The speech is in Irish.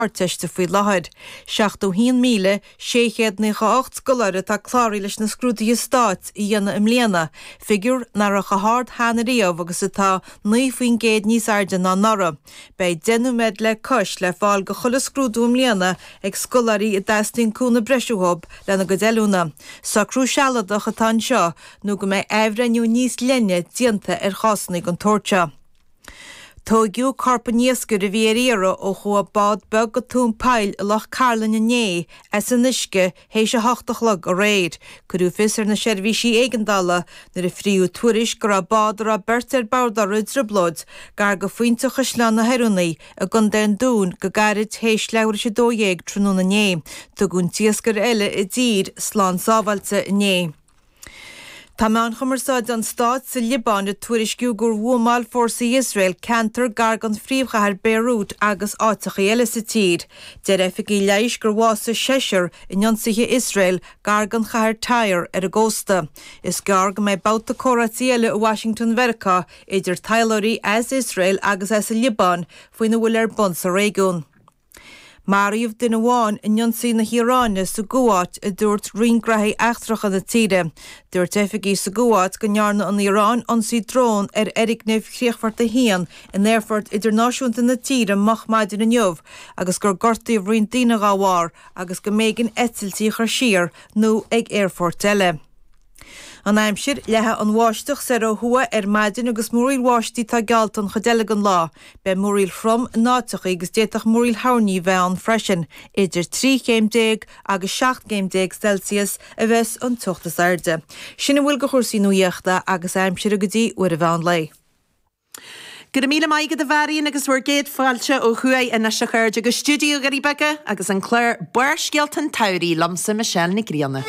hArdteiste faoi láthair. 71,698 scoláire atá cláraithe leis na scrúduithe stáit a dhéanamh i mbliana, figiúr nach raibh chomh hard cheana riamh agus atá 9 faoin gcéad níos airde ná anuraidh. Beidh 10 nóiméad le cois le fáil do chuile scrúdú i mbliana ag scoláirí a dteastaíonn cúnamh breise uathu lena gcuid oiliúna. Socrú sealadach atá anseo nó go mbeidh athbhreithniú níos leithne déanta ar chásanna den tsórt seo. Tóigeadh corp an iascaire a bhí ar iarraidh ó chuaigh bád beag go tóin poill i Loch Cairlinn inné as an uisce théis a hocht a chlog aréir. Cuireadh fios ar na seirbhísí éigeandála nuair a fríodh tuairisc go raibh bád a raibh beirt ar bord uirthi i dtrioblóid gar do Phointe Chaisleán na hOireanaí i gContae an Dúin go gairid théis leathuair théis a dó dhéag tráthnóna inné. Tugadh an t-iascaire eile i dtír slán sábháilte inné. Tá meáin chumarsáide an stáit sa Liobáin ag tuairisciú gur bhuamáil fórsaí Iosrael ceantar gar don phríomhchathair Beirut agus áiteacha eile sa tír. Deir oifigigh leighis gur bhásaigh seisear in ionsaithe Iosrael gar don chathair Tyre ar an gcósta. Is gearr go mbeidh babhta comhráití eile i Washington Mheiriceá idir taidhleoirí as Iosrael agus as an Liobáin faoina bhfuil ar bun sa réigiún. Maraíodh duine amháin in ionsaí na hIaráine sa gCuáit, a dúirt roinn gnaithí eachtracha na tíre. Dúirt oifigigh sa gCuáit go ndearna an Iaráin ionsaí drón ar fhoirgneamh chríochfort 1 in aerfort idirnáisiúnta na tíre moch maidin inniu agus gur gortaíodh roinnt daoine dá bharr agus go mb'éigean eitiltí a chur siar nó chuig aerfoirt eile. An aimsir, Leathfaidh an bháisteach soir ó thuaidh ar maidin agus múraíl bháistí atá geallta an chuid eile den lá. Beidh múraíl throm in áiteachaí agus d'fhéadfadh múraíl thoirní bheith ann freisin. Idir trí chéim déag agus seacht gcéim déag Celsius a bheas an teocht is airde. Sin a bhfuil de chúrsaí nuaíochta agus aimsire go dtí uair an mheán lae. Go raibh míle maith agat a Mharion agus bhur gcéad fáilte ó thuaidh anois a chairde go Stiúideo na nDoirí Beaga agus an clár Barrscéalta an tSamhraidh liomsa Michelle Nic Grianna.